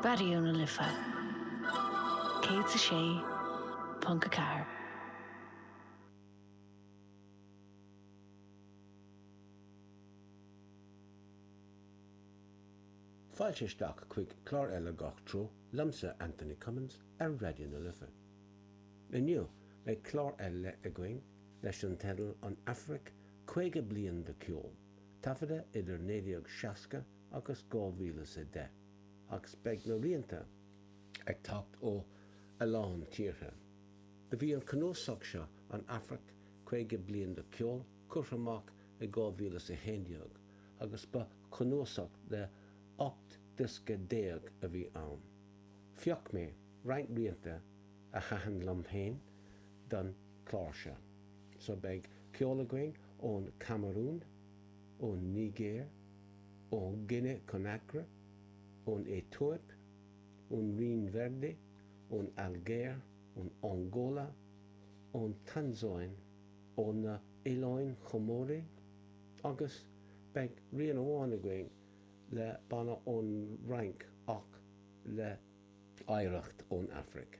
Raidió na Life 106.4. Fáilte isteach chuig clár eile Gach Treo liomsa, Anthony Cummins, ar Raidió na Life. Inniu, beidh clár ar leith againn leis an teideal An Afraic, 50 bliain de cheol. taifeadta idir 1960 agus 2010, agus beidh na rianta ag teacht ó a lán tíortha. Do bhí an cnuasach seo, An Afraic, Caoga Bliain de Cheol, curtha amach i 2011, agus ba chnuasach de 18 diosca a bhí ann. Phioc mé roinnt rianta a thaitin liom féin don chlár seo. So beidh ceol againn ón Camarún, ón Nigéir, ó Ghine Conacra, ón Aetóip, ón Rinn Verde, ón Ailgéir, ón Angóla, ón Tansáin, ó na Oileáin Chomóraigh agus beidh rian amháin againn le banna ón Fhrainc ach le hoidhreacht ón Afraic.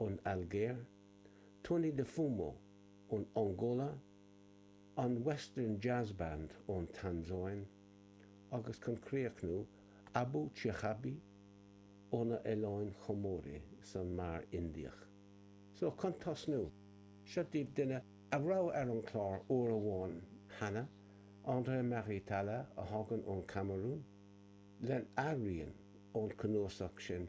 ón Ailgéir, Tony do Fumo ón Angóla, an Western Jazz Band ón Tansáin agus, chun críochnú, Abou Chihabi ó na Oileáin Chomóraigh san Mhuir Indiach. So, chun tosnú, seo daoibh duine a raibh ar an chlár uair amháin cheana, André Marie Tala a thagann ón Camarún lena rian ón cnuasach sin